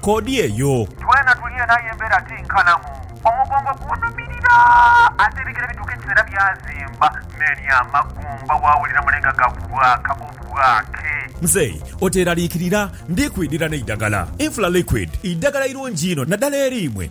koodi eyo. Twena tuli eno aye embeera ti nkalamu. Omugongo gunhumirira ate ebigere bituuka ekiseera byazimba n'eri amagumba waawulira mule nga gabwaaka obwaake. Mzei oteeraliikirira, ndi kwidhira n'eidagala. Infla Liquid idagala irungi inho naddala eri imwe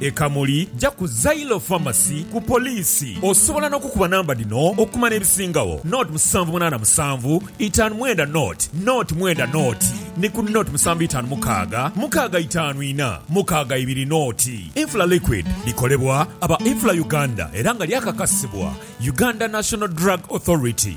E Kamuli ja ku Zailo Pharmacy ku poliisi. Osobola n'okukuba namba dhino okumanya ebisingagho, nought musanvu munaana musanvu itaanu mwenda nought nought mwenda nought ni ku nought musanvu itaanu mukaaga mukaaga itaanu ina mukaaga ibiri nought. Infla Liquid likolebwa aba Infla Uganda era nga lyakakasibwa Uganda National Drug Authority.